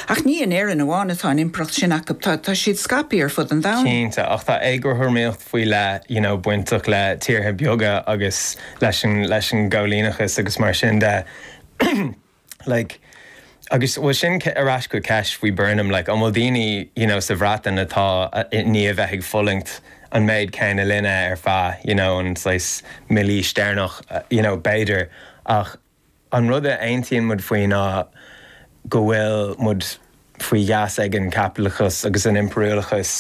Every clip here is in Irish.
Ach ní in Éirinn amháin atá an impireacht sin acu, tá siad scaipthe ar fud an domhain. Cinnte, ach tá éagothramaíocht faoi leith you know bainteach le tíortha beaga agus leis an gcoilíneachas agus mar sin de like agus bhuel sin ar ais chuig ceist faoi Burnham like an bhfuil daoine you know sa Bhreatain atá i ndiaidh bheith ag fulaingt an méid céanna linn ar feadh you know an saghas míle bliain deireanach you know b'fhéidir ach An rud a aontaíonn muid faoi ná go bhfuil muid faoi gheasa ag an chaipitleachas agus an impiriúlachas,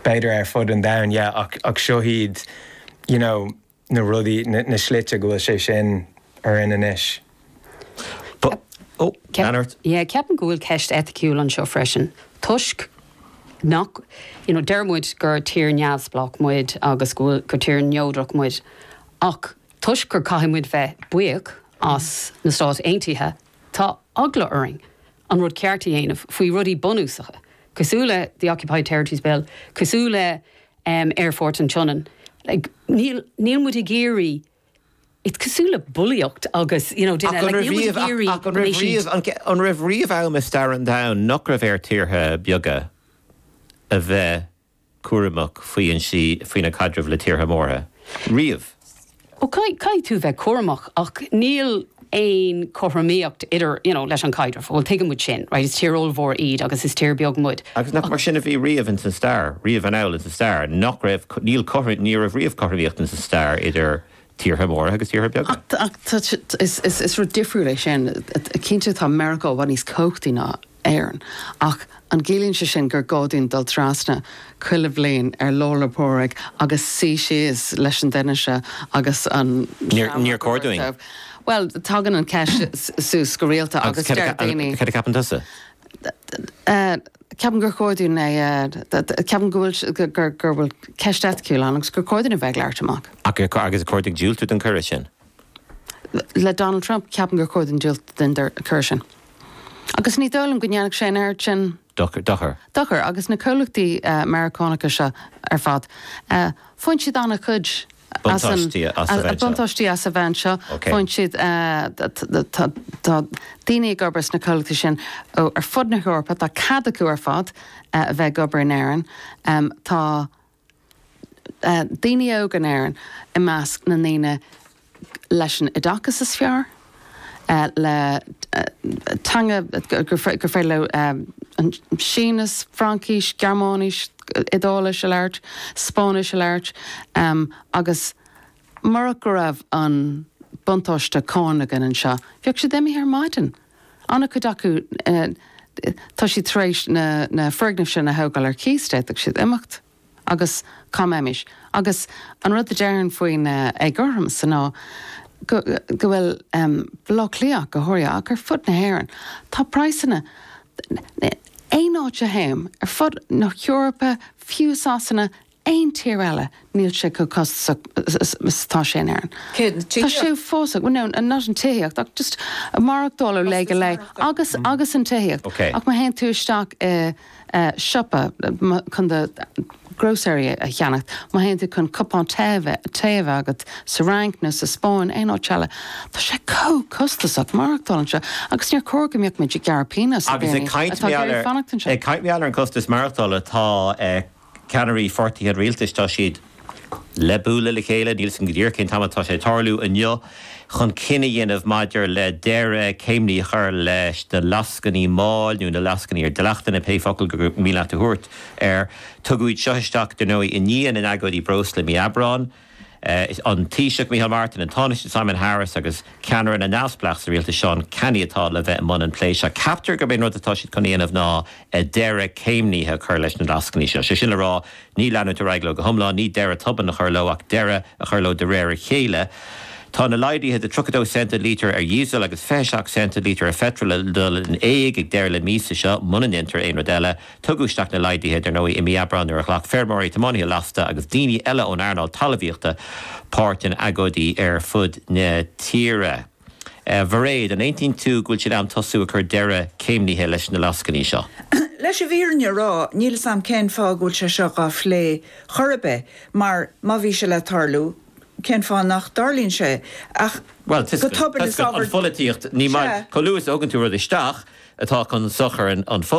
b'fhéidir ar fud an domhain, yeah, ach, ach seo iad, you know, na rudaí, na, na slite go bhfuil sé sin orainn anois. Ceap, oh, ceap, yeah, ceapann go bhfuil ceist eiticiúil anseo freisin toisc nach, you know, deir muid gur tír neamhspleách muid agus go bhfuil, gur tír neodrach muid ach, Toisc gur caithfidh muid bheith buíoch as na Stáit Aontaithe, tá eagla orainn an rud ceart a dhéanamh faoi rudaí bunúsacha cosúil le The Occupied Territories Bill, cosúil le Aerfort an tSionainn. Níl muid ag iarraidh, is cosúil le bulaíocht agus, you know, duine, like, níl muid ag iarraidh go mbeidh siad. An raibh riamh am i stair an domhain nach raibh ar thíortha beaga a bheith cúramach faoina gcaidreamh le tíortha móra riamh. Ó, caithfidh tú bheith cúramach ach níl aon chothromaíocht idir, you know, leis an chaidreamh. Bhuel, tuigeann muid sin, right, is tír ollmhór iad agus is tír beag muid. Agus nach mar sin a bhí riamh ins an stair, riamh anall ins an stair, nach raibh, níl, ní raibh riamh cothromaíocht ins an stair idir tíortha móra agus tíortha beaga. Ach is rud difriúil é sin. Cinnte tá Meiriceá i bhfad níos cumhachtaí ná Éirinn. Ach an gciallaíonn sé sin gur gá dúinn dul trasna chuile bhliain ar Lá 'le Pádraig agus suí síos leis an duine seo agus an seamróg a thabhairt dóibh? Bhuel, tagann an cheist suas go rialta agus deir daoine. Agus céard a cheapann tusa? Ceapaim gur chóir dúinn a. Ceapaim go bhfuil, gur bhfuil ceist eiticiúil ann agus gur chóir dúinn a bheith ag labhairt amach. Agus gur chóir diúltú don chuireadh sin? le Donald Trump, ceapaim gur chóir dúinn diúltú don chuireadh sin. Agus ní dóigh liom go ndéanfadh sé an oiread sin. dochair. dochair. Agus na comhlachtaí Meiriceánacha seo ar fad, faigheann siad an-chuid buntáistí as a bheith anseo. Faigheann siad, tá daoine ag obair sna comhlachtaí sin ó ar fud na hEorpa, tá cead acu ar fad a bheith ag obair in Éirinn, tá. daoine óga in Éirinn i measc na ndaoine leis an oideachas is fearr, le teangacha gur féidir leo Sínis, Fraincis, Gearmáinis, Iodáilis a labhairt, Spáinnis a labhairt, agus murach go raibh an buntáiste cánach againn anseo, bheadh siad imithe ar maidin. An-chuid acu, tá siad tar éis na foirgnimh sin a thógáil ar cíos, d'fhéadfadh siad imeacht agus cá mbeimis. Agus an rud a deirim faoin éagothromas san ná go bhfuil Baile Átha Cliath, go háirithe, ach ar fud na hÉireann, tá praghsanna, aon áit a théim, ar fud na hEorpa, fiú Sasana, aon tír eile, níl sé chomh costasach 's tá sé in Éirinn. Tá sé fós, seachas an tithíocht ach just maireachtáil ó lá go lá agus, agus an tithíocht ach má théann tú isteach i siopa chun do grocery a cheannacht, má théann tú chun cupán tae a bheith agat sa Fhrainc nó sa Spáinn, aon áit eile, tá sé chomh costasach maireachtáil anseo agus níor chóir go mbeadh muid ag gearradh pionós ar dhaoine atá ag iarraidh fanacht anseo. Ag caint ar an chostas maireachtála, tá. ceannairí pháirtithe an rialtais, tá siad le bualadh le chéile, níl a fhios againn go díreach cén t-am atá sé ag tarlú inniu, chun cinneadh a dhéanamh maidir le deireadh céimnithe a chur leis na lascainí máil nó na lascainí ar dleachtanna, pé focal is mian leat a thabhairt air. Tugadh iad seo isteach, dar ndóigh, i ndiaidh na n-agóidí breosla i mí Aibreáin. an Taoiseach Micheál Martin, an Tánaiste Simon Harris agus ceannaire na neamhspleách sa rialtas Seán Canney atá le bheith i mbun an phlé seo. Ceaptar gurb é an rud atá siad chun a dhéanamh ná deireadh céimnithe a chur leis na lascainí seo. Sé sin le rá, ní leanúint ar aghaidh leo go hiomlán, ní deireadh tobann a chur leo ach deireadh a chur leo de réir a chéile. Tá na laghduithe de 32 cent an lítear ar dhíosal agus 27 cent an lítear ar pheitreal le dul in éag ag deireadh na míosa seo, muna ndéantar aon rud eile. Tugadh isteach na laghduithe, dar ndóigh, i mí Aibreáin nuair a ghlac feirmeoirí, tiománaithe lasta agus daoine eile ón earnáil talmhaíochta páirt in agóidí ar fud na tíre. A Mhairéad, an aontaíonn tú go bhfuil sé in am tosú ag cur deireadh céimnithe leis na lascainí seo? Leis an bhfírinne a rá, níl a fhios agam cén fáth go bhfuil sé seo dhá phlé chor ar bith, mar má bhí sé le tarlú, cén fáth nach dtarlaíonn sé ach Bhuel, go tobann? Is ábhar. An pholaitíocht, ní maith. Chomh luath is a thugann tú rud isteach atá chun sochair an.